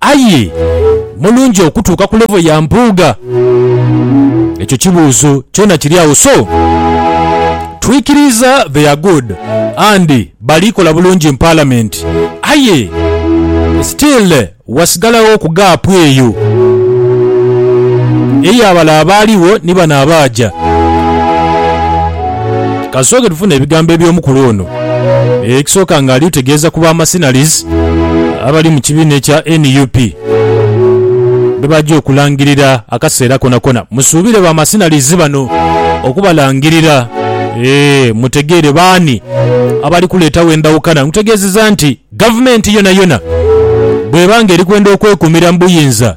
Aye mulungi okutuuka ku level ya Mpuuga? Ekyo kibuuzo kyona kiri agho so twikiriiza they are good and bali kola bulungi in parliament aye still wasigalagho ku gap eyo eya bale abaaligho ni bano abaaja. Kasooke tufune ebigambo eby'omukulu ono. ekisooka nga ali utegeeza ku ba Mercenaries abali mu kibiina ekya nup bebaja okulangirira akaseera konakona. Musuubire ba Mercenaries bano okubalangirira eeh mutegeere baani abali kuleetawo endhawukana. Nkutegeezeza nti gavumenti yonayona bweba nga erikwenda okwekumira mu buyinza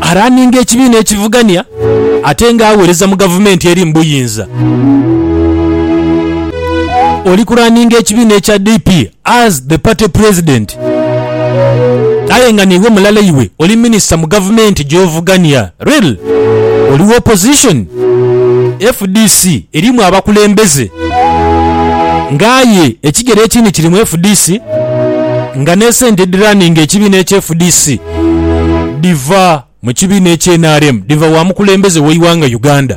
araninga ekibiina ekivugania ate nga aghereza mu gavumenti eri mu buyinza. Oli kuraninga ekibiina ekya DP as the party president aye nga niiwe mulala iwe oli minisita mu gavumenti gy'ovugania. Rel, Oli wa opposition? Fdc erimu abakulembeze nga aye ekigere ekindi kiri mu fdc nga n'esente edhiraninga ekibiina ekye fdc dhiva mu kibiina ekye nrm dhiva wa mukulembeze w'eighanga Uganda.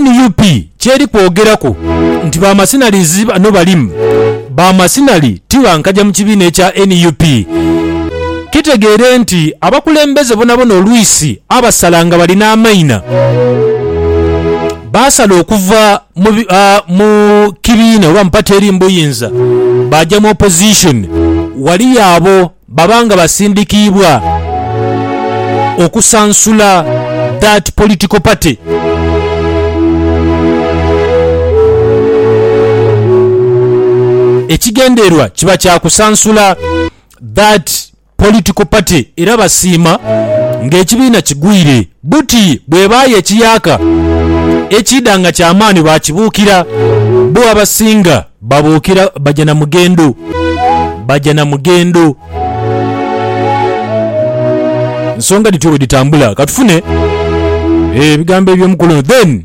Nup kyeri kwogeraku nti ba masinalizi bano balimu ba masinali ti bankaja mu kibiina ekya nup. Kitegeere nti abakulembeze bonabona olwisi abasala nga bali n'amaina baasala okuva mu kibiina oba mu pate eri mu buyinza baaja mu opposition. Waliyo abo. Baba nga basindikiibwa okusansula that political party. Ekigendererwa kiba kya kusansula that political party era basiima ng'ekibiina kigwire buti bw'ebaayo ekiyaaka ekiidha nga ky'amaani baakibuukira bo abasinga. Babuukira baja na mugendo, baja na mugendo. Nsonga dhityo bwe dhitambula. Ka tufune ebigambo eby'omukulu ono then.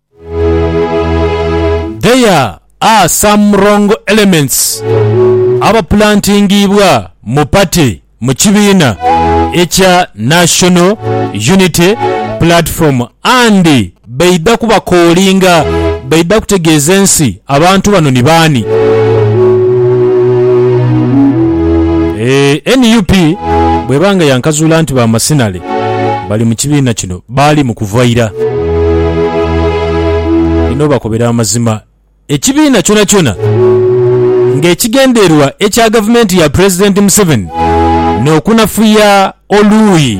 There are some wrong elements abapulantingiibwa mu party mu kibiina ekya National Unity Platform and baidha kubakoolinga baidha kutegeeza ensi abantu bano ni baani. Nup bweba nga yankazuula nti ba masinale bali mu kibiina kino, Baali mu kuva ira. Bino bakobera amazima ekibiina kyonakyona nga ekigendererwa ekya gavumenti ya Pulezidenti Museveni n'okunafuya oluuyi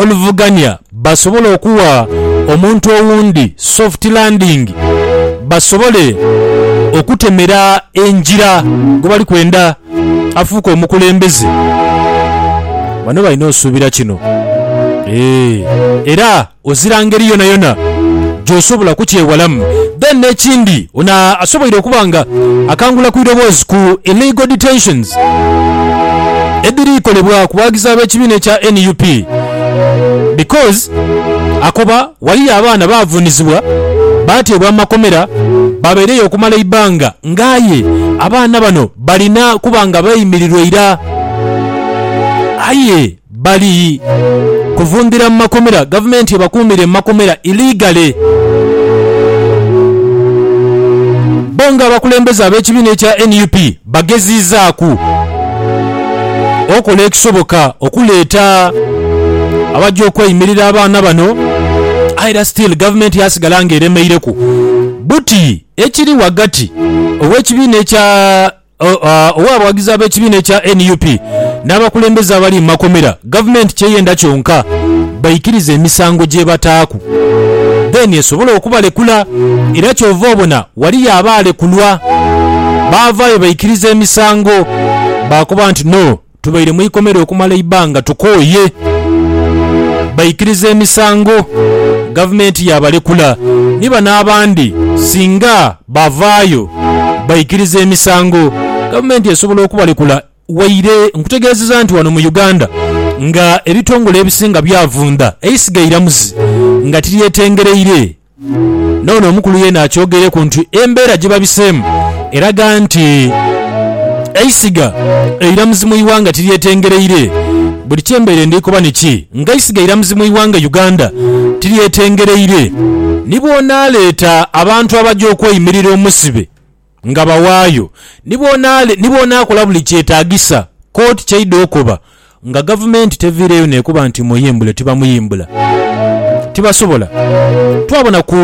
oluvuganya basobole okuwa omuntu owundi soft landing basobole okutemera engira gwebali kwenda. afuuke omukulembeze. Bano balina osuubira kino. Eeh. Era ozira ngeri yonayona gy'osobola kukyewalamu. Then n'ekindi, ono asoboire okuba nga akangula ku idoboozi ku illegal detentions edhiri kolebwa ku bawagizi ab'ekibiina ekya nup because akoba. Ghaliyo abaana baavunizibwa, baateebwa amakomera, baabaireyo okumala eibanga nga aye abaana bano balina kuba nga beeyimirirwa ira. Aye bali kuvundhira mu makomera, gavumenti ebakuumire mu makomera illegally. Bbo nga abakulembeze ab'ekibiina ekya nup Bageziizaaku okola ekisoboka okuleeta abaja okweimirira abaana bano aye era still gavumenti yasigala nga eremeireku buti ekiri ghagati ow'ekibiina ekya ow'abawagizi ab'ekibiina ekya nup n'abakulembeze abali mu makomera. Gavumenti kyeyenda kyonka baikirize emisango gyebataaku then esobole okubalekula era kyova obona waliyo abaalekulwa baavaayo baikiriza emisango baakoba nti no tubaire mu ikomera okumala eibbanga tukooye baikiriza emisango gavumenti yaabalekula ni bano abandi singa bavaayo baikiriza emisango gavumenti esobola okubalekula Waire nkutegeezeza nti wano mu Uganda nga ebitongole ebisinga byavundha eisiga eiramuzi nga tiryetengereire n'ono omukulu yeena akyogeireku nti embeera gyebabiseemu eraga nti eisiga eiramuzi mu ighanga tiryetengereire buli kyembaire ndhikoba niki nga eisiga eiramuzi mu ighanga Uganda tiryetengereire nibwonaleeta abantu abaja okweimirira omusibe Nga bawaayo ni bw'onaakola buli kyetaagisa kkooti ky'eidha okoba nga gavumenti teviireeyo n'ekoba nti muyimbule tibamuyimbula. Tibasobola. Twabona ku.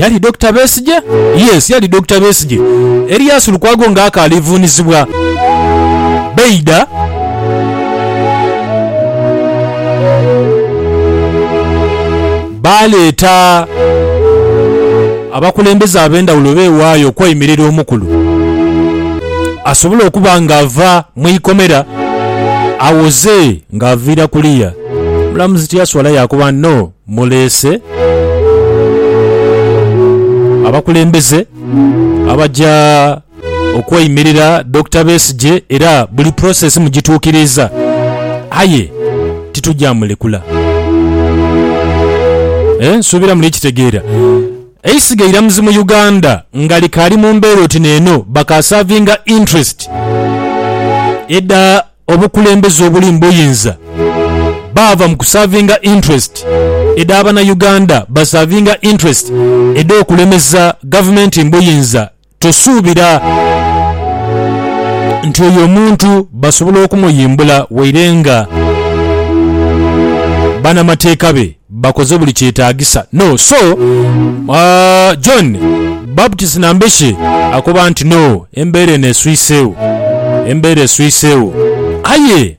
Yali Dokita Besigye? Yes, yali Dokita Besigye. Erias Lukwago nga akaali vuunizibwa. Baidha. Baaleeta abakulembeze ab'endhawulo beewaayo okweimirira omukulu asobole okuba ng'ava mu ikomera awoze ng'aviira kuliya. Omulamuzi tiyaswala yaakoba no muleese abakulembeze abaja. okweimirira Dokita Besigye era buli process mugituukiriiza aye titugya mulekula. Eh nsuubira muli kitegeera. Eisiga eiramuzi mu Uganda nga likaali mu mbeera oti n'eno bakaasavinga interest edha obukulembeze obuli mu buyinza baava mu kusavinga interest edha Banauganda basavinga interest edh'okulemeza gavumenti mu buyinza Tusuubira nti oyo omuntu basobola okumuyimbula waire nga banamateeka be bakoze buli kyetaagisa. No. So, John Baptist Nambeshe akoba nti, No, embeera eno eswiseegho. Embeera eswiseegho. Aye.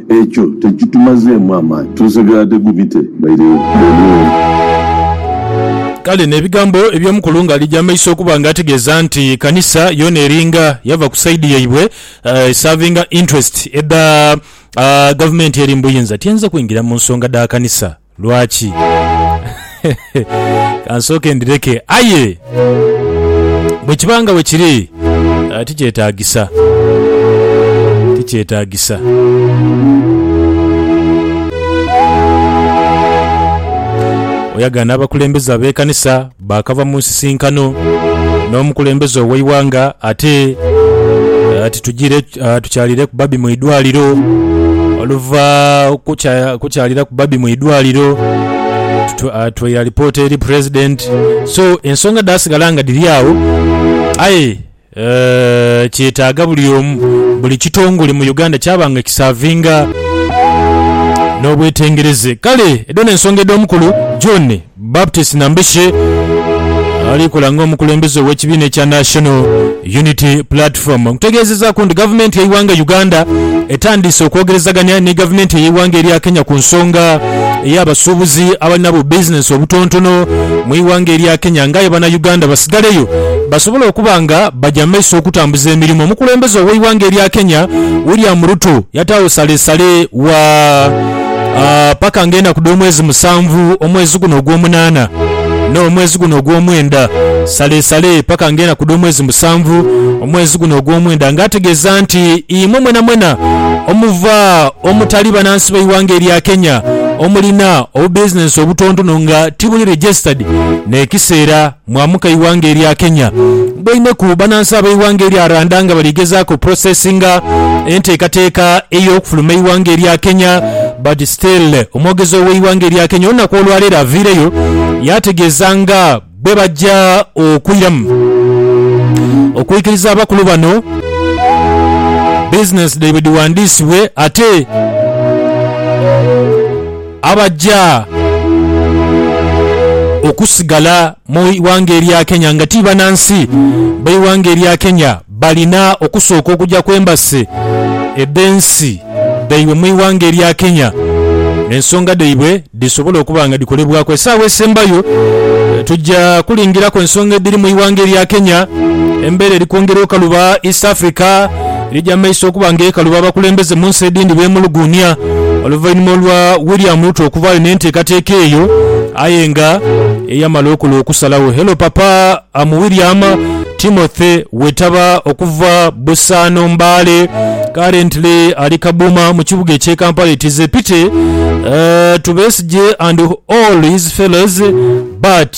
Ekyo tekitumazeemu amaani. Tusigala tegubite baire bwonoono. Kale n'ebigambo eby'omukulu nga ali gy'amaiso okuba nga ategeeza nti kanisa yoona eringa yava ku saidi yaibwe esavinga interest edha gavumenti eri mu buyinza, tiainza kwingira mu nsonga dha kanisa. Lwaki? Kansooke ndhireke. Aye bwe kiba nga bwe kiri, tikyetaagisa. Tikyetaagisa. Oyagana abakulembeze ab'ekanisa Baakava mu nsisinkano n'omukulembeze ow'eighanga ate ati tugire tukyalireku babi mu idwaliro. Oluva kukya- kukyaliraku babi mu idwaliro tu- ah, tweira lipoota eri pulezidenti so ensonga dhaasigala nga dhiri agho aye Kyetaaga buli omu, buli kitongole mu Uganda kyaba nga kisaavinga n'obwetengereze. Kale edho n'ensonga edh'omukulu John Baptist Nambeshe ali kola ng'omukulembeze ow'ekibiina ekya National Unity Platform okutegeezezaaku nti Gavumenti y'eighanga Uganda etandiise okwogerezagania ni Gavumenti ey'eighanga erya Kenya ku nsonga ey'abasuubuzi abalina bu bizinensi obutontono mu ighanga erya Kenya ng'aye Banauganda basigaleyo basobole okuba nga baja mu maiso okutambuza emirimo. Omukulembeze ow'eighanga erya Kenya William Ruto yataagho salesale wa paka nga enaku dh'omwezi musanvu, omwezi guno ogwomunaana n'omwezi guno ogwomwenda. Salesale paka nga enaku dh'omwezi musanvu, omwezi guno ogwomwenda nga ategeeza nti imwe mwenamwena omuva omutali banansi b'eighanga erya Kenya omulina obubizinensi obutontono nga tibuli registered n'ekiseera Mwamuka eighanga erya Kenya. Bwaineku banansi abeighanga erya Randa nga bali gezaaku oprocessinga enteekateeka eyokufuluma eighanga erya Kenya but still omwogezi oweighanga erya Kenya olunaku olwaleero aviireyo yategeeza nga bwebajja okwiramu okwikiriza abakulu bano business dhaibwe dhiwandiisibwe ate Abaja okusigala mu ighanga erya Kenya nga ti banansi beighanga erya Kenya balina okusooka okuja ku embassy edhensi dhaibwe mu ighanga erya Kenya ensonga dhaibwe dhisobole okuba nga dhikolebwaku. Esaawa esembayo tuja kulingiraku ensonga edhiri mu ighanga erya Kenya, embera eri kwongera okaluba East Africa. Lija mu maiso okuba nga ekaluba abakulembeze mu nsi edhindi beemuluguunia oluvainhuma olwa William Ruto okuvaayo n'enteekateeka eyo aye nga eyamala okola okusalagho. Hello Papa am William Timothy Wetaba okuva Busaano Mbale currently ali Kabuma mu kibuga eky'e Kampala it is a pity to Besigye and all his fellows but